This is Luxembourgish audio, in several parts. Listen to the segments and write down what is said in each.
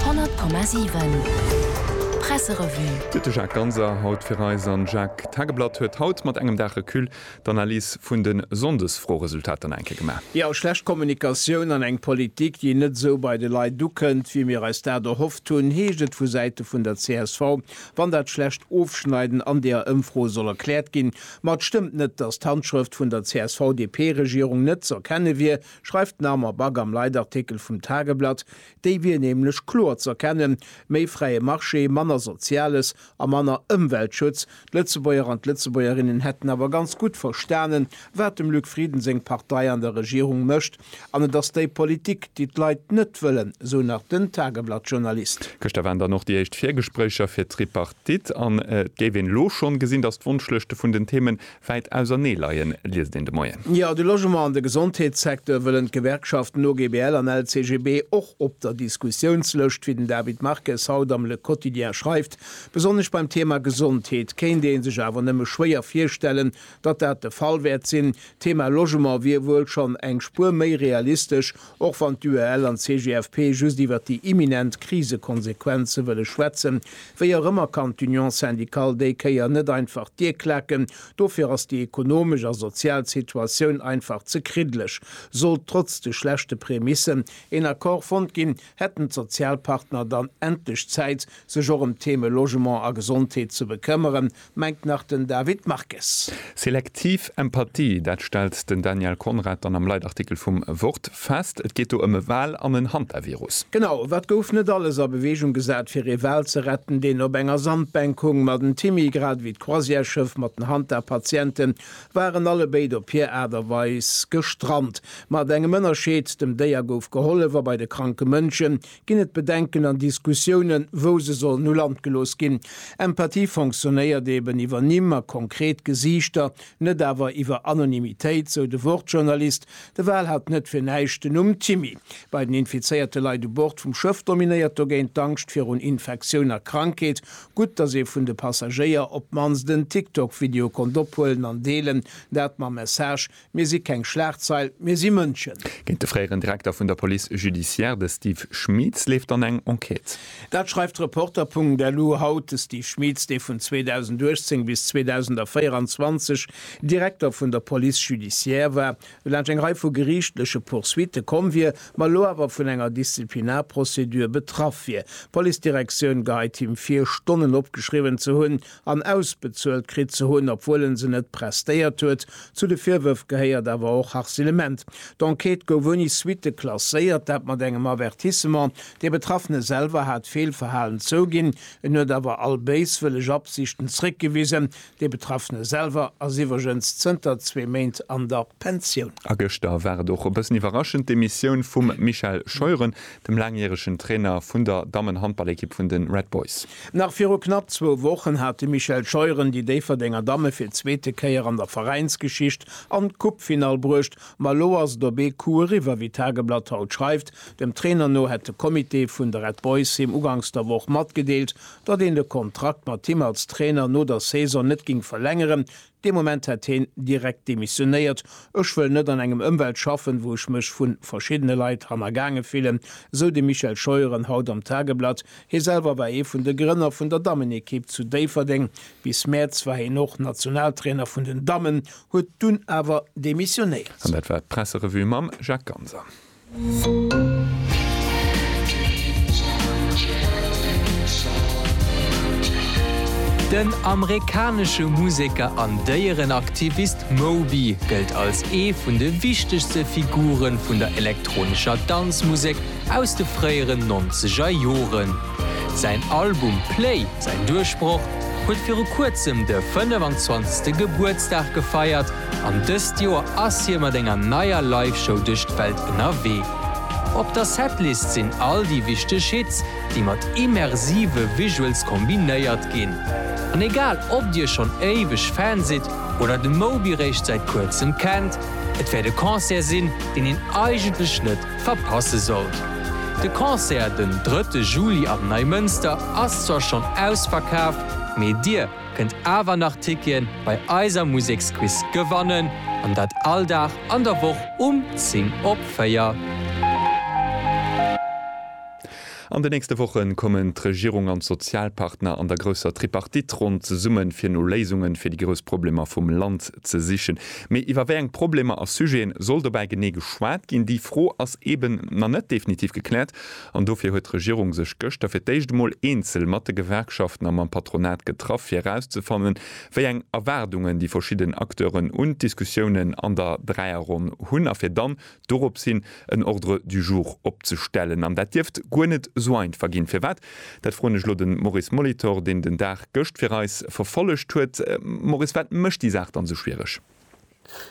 100,7 Presserevue. Gëtt de Jacques Ganser haut fir eis an Jacques d'Tageblatt huet haut mat engem Dag Recul d'Analys vun de Sonndesfroeresultater nach eng Kéier gemaach. Jo, schlecht Kommunikatioun an eng Politik, déi net esou bei de Leit ukënnt, wéi mir eis dat erhofft hunn, heescht et vu Säite vun der csv, wann dat schlecht Ofschneiden an deeër Ëmfro soll erkläert ginn. Ma et stëmmt net, datt d'Handschrëft vun der CSV-DP-Regierung net z'erkenne wier, schreift d'Narmer Back am Leitartikel vum Tageblatt, déi wier nämlech kloer z'erkennen, méi fräie Marché, manner Soziales a manner Ëmweltschutz. D'Lëtzebuerger an d'Lëtzebuergerinnen hätten awer ganz gutt verstanen, wat dem Luc Frieden seng Partei an der Regierung mécht, an et ass déi Politik, déi d'Leit net wëllen, sou nach den Tageblatt-Journalist. Gëschter waren dann och déi éischt Virgespréicher fir d'Tripartite an et géif een elo schonn gesinn, datt d'Wonschlëschte vun den Themen Wäit ausernee leien, liest een de Moien. Jo, de Logement an de Gesondheetssecteur wëllen d'Gewerkschaften OGBL an LCGB och op der Diskussiounslëscht, wéi den David Marques haut am Le Quotidien schreift. Besonnesch beim Thema Gesondheet kéint ee sech awer nëmme schwéier virstellen, datt dat de Fall wäert sinn. D'Thema Logement wier wuel schonn eng Spuer méi realistesch, Och wann d'UEL an d'CGFP just iwwert déi imminent Krisekonsequenze wëlle schwätzen, wéi och ëmmer kann d'Union syndicale déi Kéier net einfach d'Dier klaken. Dofir ass déi ekonomesch a sozial Situatioun einfach ze kriddeleg. Sollt trotz de schlechte Prämissen een Accord fonnt ginn, hätten d'Sozialpartner dann endlech Zäit, sech och ëm d'Theme Logement a Gesondheet ze bekëmmeren, mengt nach den David Marques. Selektiv Empathie, dat stellt den Daniel Conrad dann am Leitartikel vum Wort fest. Et geet do ëm e Wal an en Hantavirus. Genau, wat gouf net alles a Beweegung gesat, fir ee Wal ze retten, deen op enger Sandbänk hung? Ma den Timmy, grad ewéi d'Croisièreschëff mat den Hanta-Patienten, waren alle béid op hir Aart a Weis gestrant. Mat engem Ënnerscheed, dem Déier gouf gehollef a bei de kranke Mënschen Ginn et Bedenken an Diskussiounen, wou se sollen u Land gelooss ginn? Empathie fonctionnéiert eben iwwer Nimm a konkret Gesiichter, net awer iwwer Anonymitéit, sou de Wort-Journalist. De Val hat net fir näischt den Numm Timmy. Bei den infizéierte Leit u Bord vum Schëff dominéiert dogéint d'Angscht virun Infektioun a Krankheet. Gutt, datt ee vun de Passagéier op d'mannst en TikTok-Video konnt ophuelen an deelen, dat mam Message, Mir si keng Schlagzeil, mir si Mënschen. Géint de fréieren Direkter vun der Police judiciaire, de Steve Schmeetz, leeft dann eng Enquête. Dat schreift Reporter.lu haut. De Steve Schmeetz, dee vun 2018 bis 2024 Direkter vun der Police judiciaire war, no laanscht eng Rei vu geriichtleche Poursuitte komm wier, ma elo awer vun enger Disziplinarprocedure betraff wier. D'Policedirektioun geheit him vir, Stonnen opgeschriwwen ze hunn, an ausbezuelt kritt ze hunn, obwuel en se net prestéiert huet. Zu de Virwërf gehéiert awer och Harcelement. D'Enquête gouf ouni Suitte klasséiert, dat mat engem Avertissement. Dee Betraffene selwer hat d'Feelverhalen zouginn, en huet awer all béiswëlleg Absichten zréckgewisen. Dee Betraffene selwer ass iwwregens zënter zwee Méint an der Pensioun. A gëschter war et och e bëssen iwwerraschend, d'Demissioun vum Michel Scheuren. dem laangjäregen Trainer vun der Dammenhandballekipp vun de Red Boys. Nach viru knapp zwou Wochen hat de Michel Scheuren déi Déifferdenger Damme fir d'zweete Kéier an der Veräinsgeschicht an d'Coupefinall bruecht. Ma elo ass et op ee Coup eriwwer, wéi d'Tageblatt haut schreift. Dem Trainer no hätt de Comité vun de Red Boys him uganks der Woch matgedeelt, datt een de Kontrakt mat him als Trainer no der Saison net géing verlängeren. Dee Moment hätt heen direkt demissionéiert. Ech wëll net an engem Ëmwelt schaffen, wou ech mech vu verschiddene Leit hannergaange fillen, esou de Michel Scheuren haut am Tageblatt. Hie selwer war ee vun de Grënner vun der Dammenekipp zu Déifferdeng. Bis Mäerz war hien och Nationaltrainer vun den Dammen, huet dunn awer demissionéiert. An dat war d'Presserevue mam Jacques Ganser. Den amerikanesche Museker an Déierenaktivist Moby gëllt als ee vun de wichtegste Figure vun der elektronescher Danzmusek aus de fréieren nonzeger Joren. Säin Album Play, säin Duerchbroch, huet viru kuerzem de 25. Gebuertsdag gefeiert, An dëst Joer ass hie mat enger neier Live-Show duerch d'Welt ënnerwee. Op der Setlist sinn all déi wichteg Hits, déi mat immersive Visuals kombinéiert ginn. An egal ob dir schonn éiweg Fan sidd oder de Moby réischt säit kuerzem kennt, et wäert e Concert sinn, deen een eigentlech net verpasse sollt. De Concert den drëtte Juli am Neimënster ass zwar schonn ausverkaaft, mee dir, kënnt awer nach Tickien bei eiser Museksquiz gewannen an dat all Dag an der Woch um 10 op 4. An de nächste Woche kommen d'Regierung an d'Sozialpartner an der grousser Tripartite-Ronn zesumme fir no Léisunge fir déi grouss Problemer vum Land ze sichen. Mee iwwer wéi eng Problemer a Sujete soll dobäi genee geschwat ginn? Déi Fro ass eeben nach net definitiv gekläert. An dofir huet d'Regierung sech gëschter fir d'éischt emol eenzel mat de Gewerkschaften a mam Patronat getraff, fir erauszefannen, wéi eng Erwaardungen déi verschidden Acteuren un d'Diskussiounen an der Dräierronn hunn a fir dann dorops hin en Ordre du jour opzestellen. An dat dierft guer net esou einfach ginn. Firwat? Dat froen ech elo de Maurice Molitor, deen den Dag gëscht fir eis verfollegt huet. Maurice, wat mécht déi Saach dann esou schwiereg?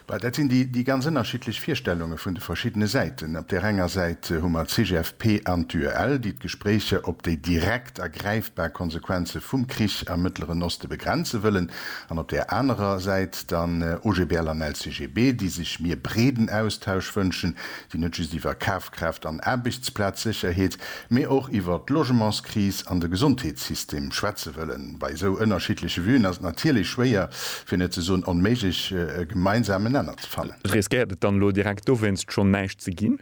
Well dat sinn déi ganz ënnerschiddlech Virstellunge vun de verschiddene Säiten. Op där enger Säit hu mer d'CGFP an d'UEL, déi d'Gespréicher op déi direkt a gräifbar Konsequenze vum Krich am Mëttleren Oste begrenze wëllen, an op där anerer Säit dann OGBL an LCGB, déi sech mir breeden Austausch wënschen, déi net just iwwer Kafkraaft an Aarbechtsplazsécherheet, mee och iwwer d'Logementskris an de Gesondheetssystem schwätze wëllen. Bei esou ënnerschiddleche Vuen ass et natierlech schwéier, fir net ze soen onméiglech, e gemeinsamen Nenner ze fannen. Riskéiert et dann elo direkt dowéinst schonn näischt ze ginn?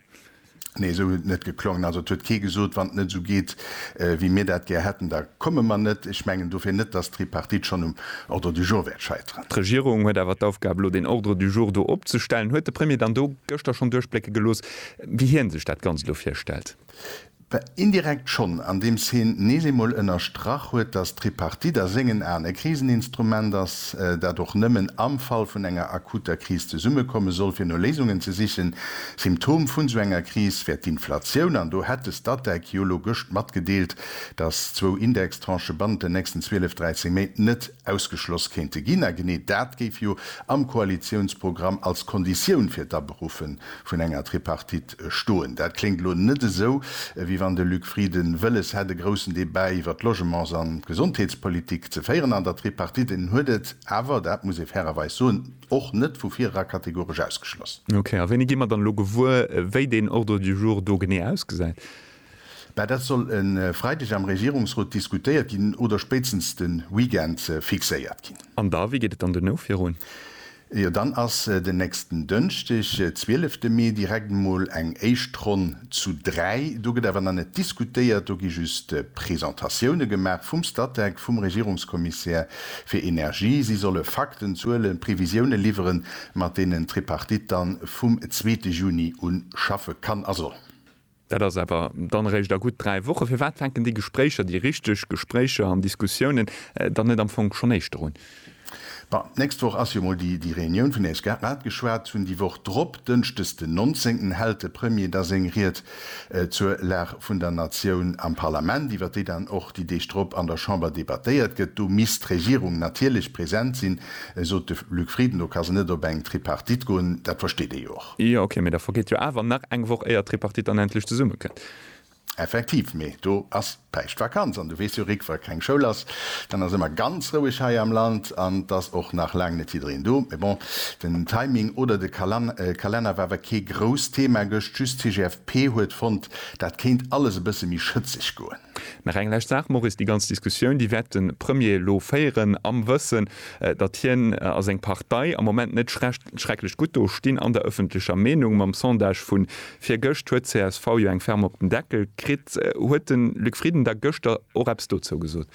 Nee, esou huet et net geklongen. Also et huet kee gesot, wann et net esou geet, wéi mir dat gär hätten, da komme mer net. Ech mengen dofir net, datt d'Tripartite schonn um Ordre du jour wäert scheiteren. D'Regierung huet awer d'Aufgab, elo deen Ordre du jour do opzestellen. Huet de Premier dann do gëschter schonn duerchblécke gelooss, wéi hie sech dat Ganzt elo virstellt? Bah, indirekt schonn, andeems hien nees eemol ënnerstrach huet, datt d'Tripartite a sengen Aen e Kriseninstrument ass, dat och nëmmen am Fall vun enger akuter Kris zesummekomme soll, fir no Léisungen ze sichen. Symptom vun esou enger Kris wär d'Inflatioun, an do hätt de Statec jo elo gëscht matgedeelt, datt zwou Indextranchë bannent den nächsten 12, 13 Méint net, Ausgeschloss kéinte ginn, a genee dat géif jo am Koalitiounsprogramm als Konditioun fir d'Aberuffe vun enger Tripartite stoen. Dat kléngt elo net esou, wéi wann de Luc Frieden wëlles hätt, e groussen Debat iwwer d'Logements an d'Gesondheetspolitik ze féieren an der Tripartite. En huet et awer, dat muss ee fairerweis soen, och net vu virera kategoresch ausgeschloss. Ok, a wéini gi mer dann elo gewuer, wéi deen Ordre du jour do genee ausgesäit? Mä dat soll e Freideg am Regierungsrot diskutéiert ginn oder spéitstens de Weekend fixéiert ginn. An da, wéi geet et dann duerno virun? Jo, dann ass den nächsten Dënschdeg, zwielefte Mee, direkt emol eng éischt Ronn zu dräi. Do gëtt awer nach net diskutéiert, do gi just Presentatioune gemaach vum Statec, vum Regierungskommissär fir Energie. Si solle Fakten, Zuelen, Previsioune liwweren, mat deenen d'Tripartite dann vum zweete Juni un schaffe kann a soll. Dat ass awer dann eréischt a gutt dräi Wochen. Firwat fänken déi Gespréicher, déi richteg Gespréicher an Diskussiounen, dann net am Fong schonn éischter un? Bon, d'nächst Woch ass jo mol déi Reunioun, vun där ech grad geschwat hunn. Déi Woch drop, dënschdes den 19, hält de Premier da seng Ried zur Lag vun der Natioun am Parlament, iwwer déi dann och déi Deeg drop an der Chamber debattéiert gëtt. Do misst d'Regierung natierlech present sinn, sot de Luc Frieden. Do ka se net op eng Tripartite goen, dat versteet ee jo och. Jo, ok, mee da vergeet jo awer nach eng Woch éier d'Tripartite dann endlech zesumme kënnt. Effektiv, mee do ass d'Päischtvakanz an du weess jo Rik, wa keng Schoul ass, dann ass ëmmer ganz roueg hei am Land an et ass och nach laang net jiddereen do. Mee bon, den Timing oder de Kalenner war awer kee grousst Thema gëscht, just d'TGFP huet fonnt, dat kéint alles e bësse méi schëtzeg goen. Nach eng lescht Saach, Maurice, déi ganz Diskussioun, déi wäert de Premier elo féieren, am Wëssen, datt hien a seng Partei am Moment net schrecklech gutt do stinn an der ëffentlecher Meenung. Mam Sondage vu virgëscht huet csv jo eng ferm op den Deckel kritt. Huet de Luc Frieden da gëschter och eppes dozou gesot?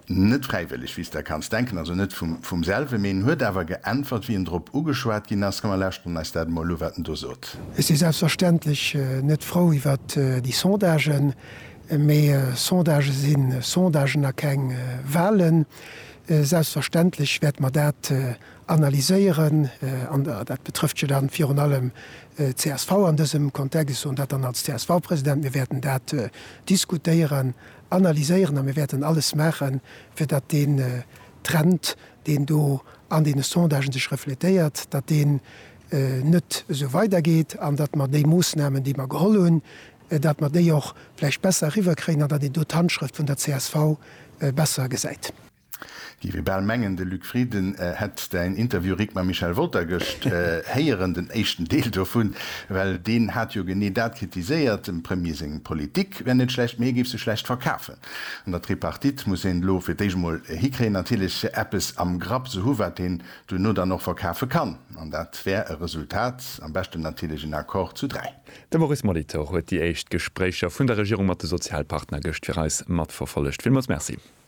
Net fräiwëlleg, wéi s der kanns denken, also net vum selwe mee en huet awer geäntwert, wéi en drop ugeschwat ginn ass. Komm mer lauschteren eis dat emol u, wat en do sot. Ech si selbstverständlech net frou iwwert déi Sondagen, mee Sondagë si Sondagen a keng Wahlen. Selbstverständlech wäerte mer dat analyséieren, an dat betrëfft jo dann virun allem d'CSV an dësem Kontext, ech soen dat dann als CSV-President, mir wäerten dat diskutéieren analyséieren a mir wäerten alles maachen, fir datt deen Trend, deen do an deene Sondagen sech refletéiert, datt deen net esou weidergeet an datt mer déi Moossnamen, déi mer geholl hunn, datt mer déi och vläicht besser eriwwerkréien an datt een do d'Handschrëft vun der csv besser gesäit. Géif ee bal mengen, de Luc Frieden hätt däin Interview Rick mam Michel Wolter gëscht héieren, den éischten Deel dovun, well deen hat jo genee dat kritiséiert, dem Premier seng Politik wär net schlecht, mee hie géif se schlecht verkafen. An der Tripartite muss een elo fir d'éischt emol hikréien, natierlech eppes am Grapp ze hu wat een duerno dann och verkafe kann, an dat wär e Resultat, am beschten natierlech en Accord zu dräi. De Maurice Molitor huet déi éischt Gespréicher vun der Regierung mat de Sozialpartner gëscht fir eis matverfollegt. Villmools Merci.